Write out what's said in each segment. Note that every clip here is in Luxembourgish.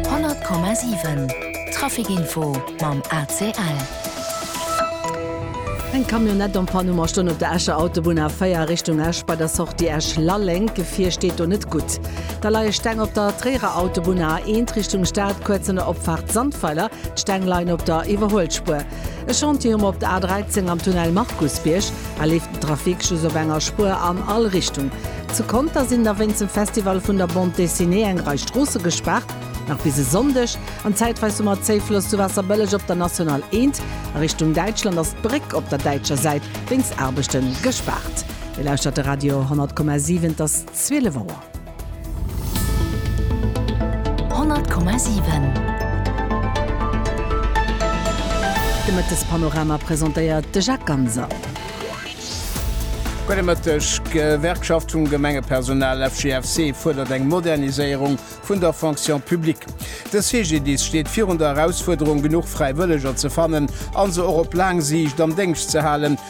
100,7 Traficinfo mam ACL. Eng Camionnette en panne um a stoung op der Escher Autobunn A4 Richtung Esch bei der Sortie Esch-Lalleng. D'Gefier steet do net gutt. Da leie Steng op der Tréierer Autobunn A1 Richtung Stad, kuerz no der Opfaart Sandweiler. D'Steng leien op der Iwwerhuelspuer. E Chantier hu mer op der A 13 am Tunnel Markusbierg. Hei leeft den Trafic just op enger Spuer an all Richtung. Zu Conter sinn da wéinst dem Festival vun der Bande Dessinée eng Rei Stroosse gespaart, nach bis e Sonndeg. An zäitweis hu mer Zéiffloss zu Waasserbëlleg op der National 1. A Richtung Däitschland ass d'Bréck op der däitscher Säit wéinst Aarbechten gespaart. Dir lauschtert de Radio 100,7, et ass 12 Auer. 100,7 De Mëttespanorama presentéiert de Jacques Ganser. Gudde Mëtteg. D'Gewerkschaft vum Gemengepersonal FGFC fuerdert eng Moderniséierung vun der Fonction publique. De CGDIS steet virun der Erausfuerderung, genuch Fräiwëlleger ze fannen a se och op laang Siicht am Déngscht ze halen.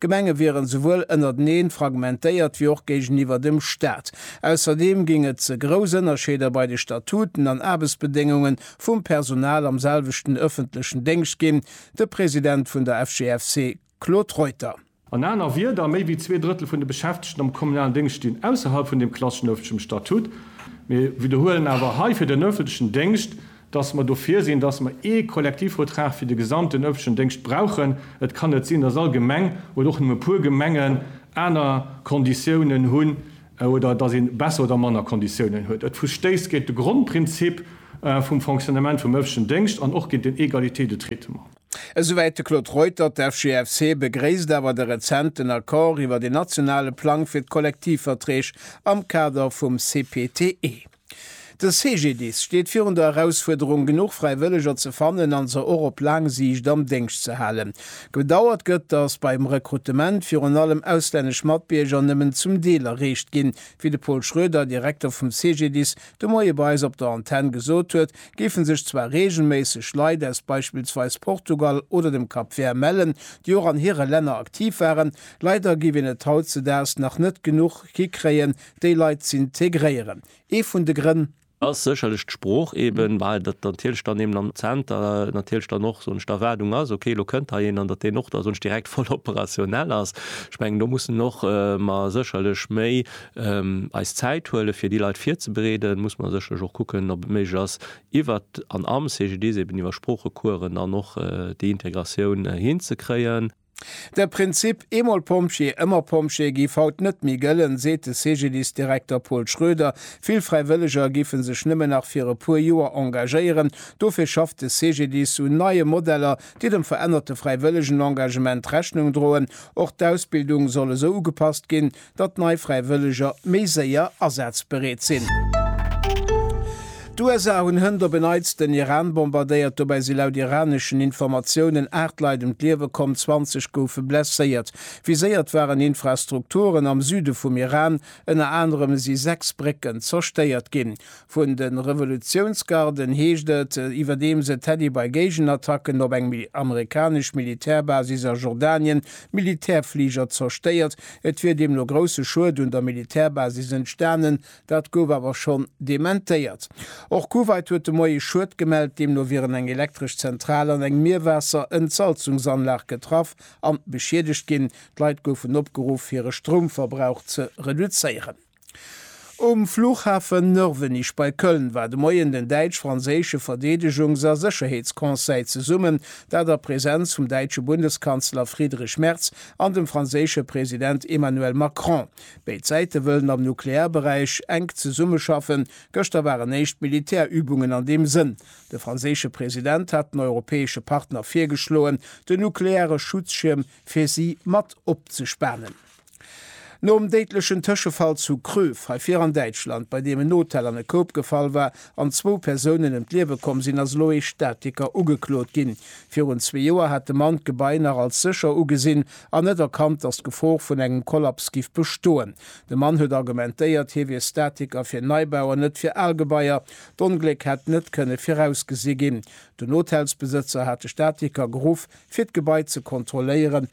D'Gemenge wieren souwuel ënnerteneen fragmentéiert wéi och géigeniwwer dem Staat. Ausserdeem géing et ze grouss Ënnerscheeder bei de Statuten an Aarbechtsbedéngunge vum Personal am selwechten ëffentlechen Déngscht ginn, de President vun der FGFC Claude Reuter. An aner Wierder, méi wéi zwee Drëttel vun de Beschäftegten am kommunalen Déngscht stinn ausserhalb vun deem klasseschen ëffentlechem Statut. Mir widderhuelen awer hei fir den ëffentlechen Déngscht, dass mer dofir sinn, dass mer ee Kollektivvertrag fir de gesamten ëffentlechen Déngscht brauchen. Et kann net sinn, dass all Gemeng oder och nëmme e puer Gemengen aner Konditiounen hunn oder dass ee besser oder manner Konditiounen huet. Et verstéisst géint de Grondprinzip vum Fonctionnement vum ëffentlechen Déngscht an och géint den Égalité de traitement. Esouwäit de Claude Reutert. D'FGFC begréisst awer de rezenten Accord iwwert een nationale Plang fir d'Kollektivverträg am Kader vum CPTE. De CGDIS steet virun der Erausfuerderung, genuch Fräiwëlleger ze fannen an se och op laang Siicht am Déngscht ze halen. Bedauert gëtt, datt beim Rekrutement virun allem auslännesch Matbierger nëmmen zum Deel erreecht ginn. Wéi de Paul Schroeder, Direkter vum CGDIS, de Moie bei eis op der Antenn gesot huet, géife sech zwar reegelméisseg Leit aus beispillsweis Portugal oder dem Cap Vert mellen, déi och an hire Länner aktiv waren. Leider géif een et hautzedaags nach net genuch hikréien, Déi Leit z'integréieren. Ee vun de Grënn. Ass sécherlech d'Sprooch eben, well dat natierlech dann eben am Zenter natierlech dann och sonst d'Erwaardung ass, okay, elo kënnt hei een an datt deen och da sonst direkt voll operationell ass. Ech mengen, do mussen och mer sécherlech méi eis Zäit huelen, fir déi Leit virzebereeden. Muss mer sécherlech och kucken, ob et méiglech ass, iwwert an am CGDIS eben iwwer Sproochecoursen dann och déi Integratioun hinzekréien. De Prinzip Eemol Pompjee, ëmmer Pompjee giff haut net méi gëllen, seet de CGDIS-Direkter Paul Schroeder. Vill Fräiwëlleger giffe sech nëmmen nach fir e puer Joer engagéieren. Dofir schafft de CGDIS un neie Modeller, déi dem verännerte fräiwëllegen Engagement Rechnung droen. Och d'Ausbildung soll esou ugepasst ginn, datt nei Fräiwëlleger méi séier asazbereet sinn. D'USA hunn hënt op en Neits den Iran bombardéiert. Dobäi si laut iraneschen Informatiounen 8 Leit ëm d'Liewe komm, 20 goufe blesséiert. Viséiert waren Infrastrukturen am Süde vum Iran, ënner anerem si 6 Brécken zerstéiert ginn. Vun de Revolutiounsgarden heescht et, iwwerdeems et Teddy bei Géigenattacken op eng amerikanesch Militärbasis a Jordanien Militärfliger zerstéiert. Et wier deemno grousse Schued un der Militärbasis entstanen, dat gouf awer schonn dementéiert. Och Kuwait huet de Moie Schued gemellt, deemno wieren eng elektresch Zentral an eng Mierwaasser-Entsalzungsanlag getraff an beschiedegt ginn. D'Leit goufen opgeruff hire Stroumverbrauch ze reduzéieren. Um Flughafen Nörvenich bei Köln war de Moien den däitsch-franséische Verdeedegungs a Sécherheetsconseil zesummen, dat a Präsenz vum däitsche Bundeskanzler Friedrich Merz an dem franséische President Emmanuel Macron. Béid Säite wëllen am Nuklearberäich enk zesummeschaffen. Gëschter waren éischt Militärübungen an deem Sënn. De franséische President hat den europäesche Partner virgeschloen, den nukleare Schutzschierm fir si mat opzespanen. Nom déidlechen Tëschefall zu Kröv, hei vir an Däitschland, bei deem en Hotel an e Koup gefall war an zwou Persounen ëm d'Liewe komm sinn, ass elo ee Statiker ugeklot ginn. Virun zwee Joer hat de Mann d'Gebai nach als sécher ugesinn an net erkannt, datt d'Gefor vun engem Kollaps giff bestoen. De Mann huet argumentéiert, hie wier Statiker fir Neibau an net fir al Gebaier. D'Ongléck hätt net kënne virausgesi ginn. Den Hotelsbesëtzer hat de Statiker geruff, fir d'Gebai ze kontrolléieren.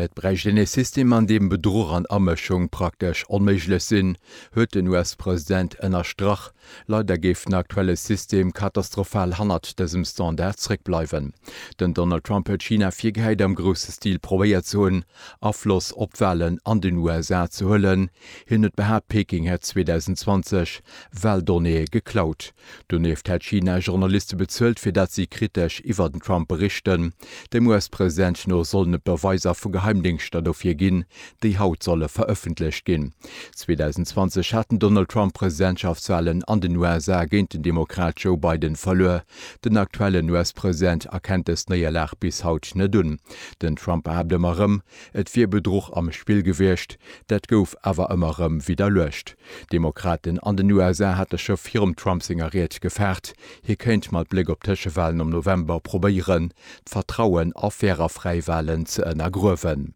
Et bräicht een ee System, an deem Bedruch an Amëschung praktesch onméiglech sinn, huet den US-President ënnerstrach. Leider géif den aktuelle System katastrophal hannert dësem Standard zréckbleiwen. Den Donald Trump huet China virgehäit, am grousse Stil probéiert ze hunn, Afloss op d'Walen an den USA ze huelen. Hien huet behaapt, Peking hätt 2020 Waldonnéeë geklaut. Donieft hätt China Journaliste bezuelt, fir datt si kritesch iwwer den Trump berichten. Dem US-President no sollen et Beweiser vu Geheimdéngschter dofir ginn, déi haut solle verëffentlecht ginn. 2020 hat den Donald Trump d'Presidentschaftswalen an den USA géint den Demokrat Joe Biden verluer. Den aktuellen US-President erkennt dës Néierlag bis haut net un. Den Trump behaapt ëmmer erëm, et wier Bedruch am Spill gewiescht. Dat gouf awer ëmmer erëm widderluecht. D'Demokraten an den USA hate scho virum Trump senger Ried gefaart, hie kéint mat Bléck op d'Tëschewalen am November probéieren, d'Vertrauen a fair a fräi Walen ze ënnergruewen.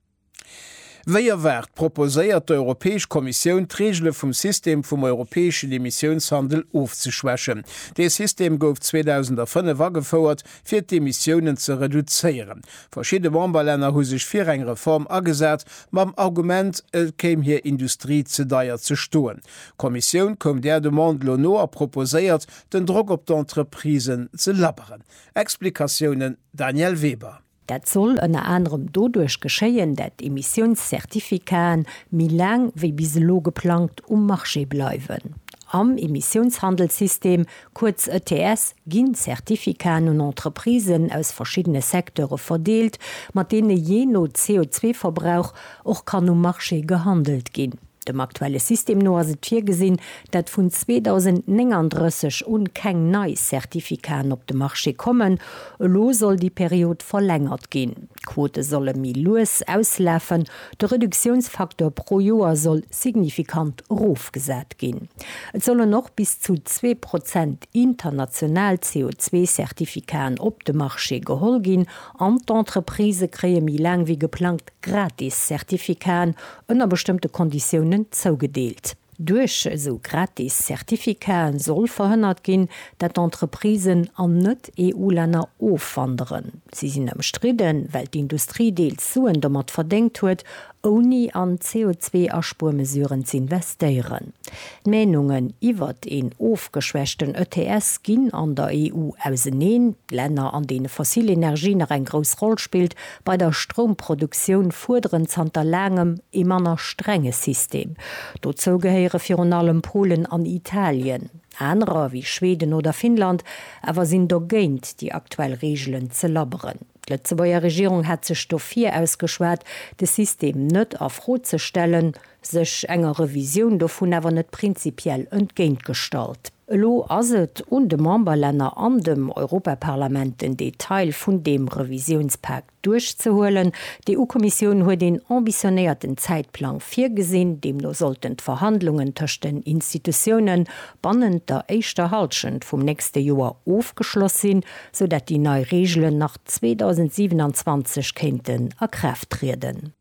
Wéi erwaart proposéiert d'Europäesch Kommissioun, d'Reegele vum System vum europäeschen Emissiounshandel ofzeschwächen. Dee System gouf 2005 agefouert, fir d'Emissiounen ze reduzéieren. Verschidde Memberlänner hu sech fir eng Reform agesat, mam Argument, et kéim hir Industrie ze deier ze stoen. D'Kommissioun koum där Demande lo no a proposéiert, den Drock op d'Entreprisen ze labberen. Explikatiounen, Danièle Weber. Dat soll ënner anerem doduerch geschéien, dat d'Emissiounscertificaten méi laang wéi bis elo geplangt um Marché bleiwen. Am Emissiounshandelssystem kuerz ETS, ginn Zertifikaten un Entreprisen aus verschiddene Secteure verdeelt, mat deene jee no CO2-Verbrauch och kann um Marché gehandelt ginn. Dem aktuelle System no ass et virgesinn, dat vun 2039 un keng nei Zertifikaten op de Marché kommen. Elo soll déi Period verlängert ginn. D'Quote solle méi lues auslafen. De Reduktiounsfaktor pro Joer soll signifikant erofgesat ginn. Et sollen och bis zu zwee Prozent international CO2-Certificaten op de Marché geholl ginn an d'Entreprisë kréie méi laang wéi geplangt gratis Certificaten ënner bestëmmte Konditiounen zougedeelt. Duerch esou gratis Certificaten soll verhënnert ginn, dat d'Entreprisen an Net-EU-Länner ofwanderen. Si sinn ëmstridden, well d'Industrie deels Suen domat verdéngt huet ouni an CO2-Aspuermesuren z'investéieren. D'Meenungen iwwert een ofgeschwächten ETS ginn an der EU auseneen. Länner, an deene fossil Energie nach eng grouss Roll spillt bei der Stroumproduktioun, fuerderen zanter laangem ee manner strenge System. Dozou gehéiere virun allem Polen an Italien. Anerer, wéi Schweden oder Finnland awer, sinn dogéint, déi aktuell Reegelen ze labberen. D'Lëtzebuerger Regierung hätt sech dofir ausgeschwat, de System net a Fro ze stellen, sech enger Revisioun dovun awer net prinzipiell entgéint gestallt. Elo ass et un de Memberlänner an dem Europaparlament, den Detail vun deem Revisiounspak duerchzehuelen. D'EU-Kommissioun huet een ambitionéierten Zäitplang virgesinn, deemno sollten d'Verhandlungen tëscht den Institutiounen bannent der éischter Hallschent vum nächste Joer ofgeschloss sinn. sou dat déi nei Reegelen nach 2027 kéinten a Kraaft trieden.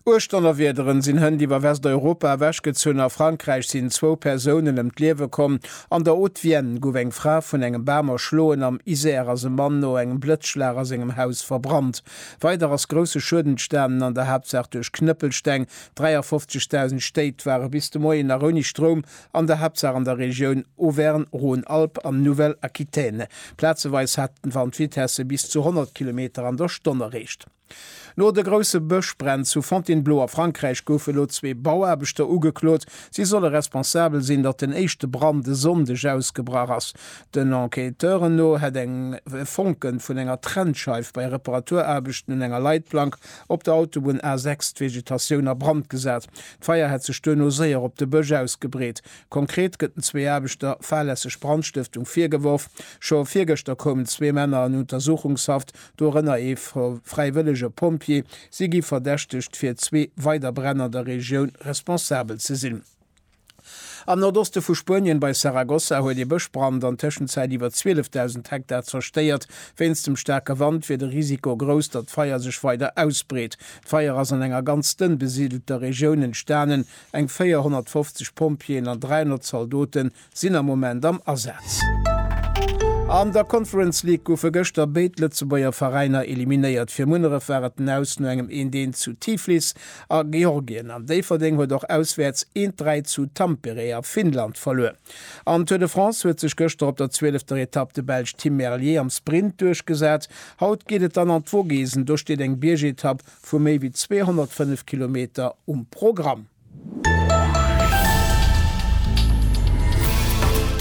Uecht Donnerwiederen sinn hënt iwwer Westeuropa ewechgezunn. A Frankräich sinn zwou Persounen ëm d'Liewe komm. An der Haute-Vienne gouf eng Fra vun engem Bam erschloen. Am Isère ass e Mann no engem Blëtzschlag a sengem Haus verbrannt. Weider ass grousse Schued entstanen, an der Haaptsaach duerch Knëppelsteng. 53.000 Stéit ware bis de Moien nach ouni Stroum an der Haaptsaach an der Regioun Auvergne, Rhône-Alpes an Nouvelle-Aquitaine. Plazeweis hat den Wand Vitesse bis zu 100 Kilometer an der Stonn erreecht. No de grousse Bëschbränn zu Fontainebleau a Frankräich goufe elo zwee Bauaarbechter ugeklot. Si solle responsabel sinn, datt den éischte Brand e Sonndeg ausgebrach ass. Den Enquêteuren no hätt eng Fonke vun enger Trennscheif bei Reparaturaarbechten un enger Leitplank op der Autobunn A6 d'Vegetatioun a Brand gesat. D'Feier hätt sech duerno séier op de Bësch ausgebreet. Konkret gëtt den zwee Aarbechter fahrlässeg Brandstëftung virgeworf. Scho virgëschter koumen zwee Männer an Untersuchungshaft, dorënner ee fräiwëllege Pompjee. Si gi verdächtegt, fir zwee weider Bränn an der Regioun responsabel ze sinn. Am Nordoste vu Spuenien, bei Saragossa, huet ee Bëschbrand an Tëschenzäit iwwer 12.000 Hektar zerstéiert. Wéinst dem staarke Wand wier de Risiko grouss, datt d'Feier sech weider ausbreet. D'Feier ass an enger ganz dënn besidelter Regioun entstanen. Eng 450 Pompjeeën an 300 Zaldote sinn am Moment am Asaz. An der Conference League goufe gëschter béid Lëtzebuerger Veräiner eliminéiert. Fir Munneref war et den Aus no engem 1 Deen zu Tiflis. A Georgien an Déifferdeng huet och auswäerts een d'Dräi zu Tampere a Finnland verluer. Am Tour de France huet sech gëschter op der zwielefter Etapp de Belsch Tim Merlier am Sprint duerchgesat. Haut geet et dann an d'Vogesen, do steet eng Biergetapp vu méi wéi 205 Kilometer um Programm.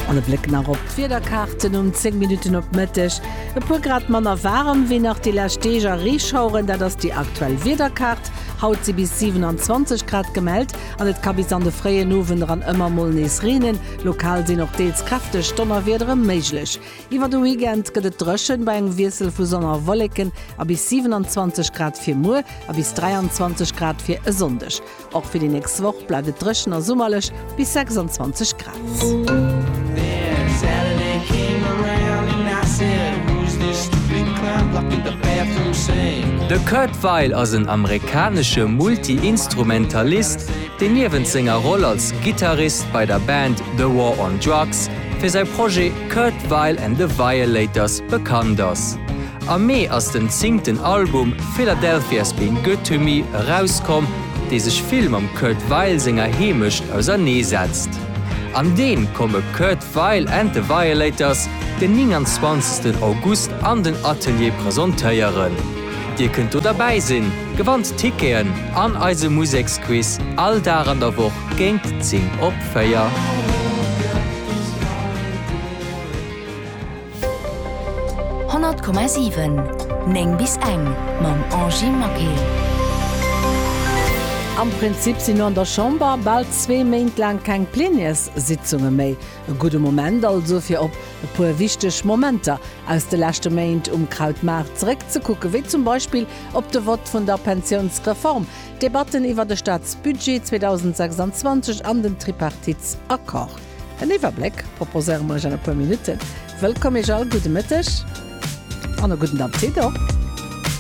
An e Bléck nach op d'Wiederkaarten um 10 Minutten op Mëtteg. E puer Grad manner waarem wéi nach déi lescht Deeg a Reeschaueren, dat ass déi aktuell Wiederkaart. Haut si bis 27 Grad gemellt an et ka bis an de fréien Owend eran ëmmer mol nees reenen. Lokal sinn och deels kräfteg Donnerwiedere méiglech. Iwwer de Weekend gëtt et dréchen, bei engem Wiessel vu Sonn a Wolleken a bis 27 Grad fir muer a bis 23 Grad fir e Sonndeg. Och fir déi nächst Woch bleift et dréchen a summerlech bis 26 Grad. De Kurt Weill ass en amerikanesche Multi-Instrumentalist, deen niewent senger Roll als Gittarist bei der Band The War on Drugs fir säi Projet Kurt Weill and the Violators bekannt ass. Am Mee ass den zingten Album Philadelphia's Been Good To Me erauskomm, dee sech vill mam Kurt Weill senger Heemecht ausernee setzt. An deem komme Kurt Weill and The Violators den 29 August an den Atelier presentéieren. Dir kënnt do derbäi sinn, gewannt Ticketen an eise Museksquiz all Dag an der Woch géint 10 op 4. 100,7 9 bis eng mam Angie Maquet. Am Prinzip sinn no an der Chamber bal zwee Méint laang keng Plénièrssitzunge méi. E gudde Moment also fir op e puer wichteg Momenter aus de leschte Méint um Krautmaart zeréck ze kucken, wéi zum Beispill op de Vott vun der Pensiounsreform, d'Debatten iwwer de Staatsbudget 2026 an den Tripartitsaccord. En Iwwerbléck proposéiere mer iech an e puer Minutten. Wëllkomm iech all, gudde Mëtteg an e gudden Apptit och!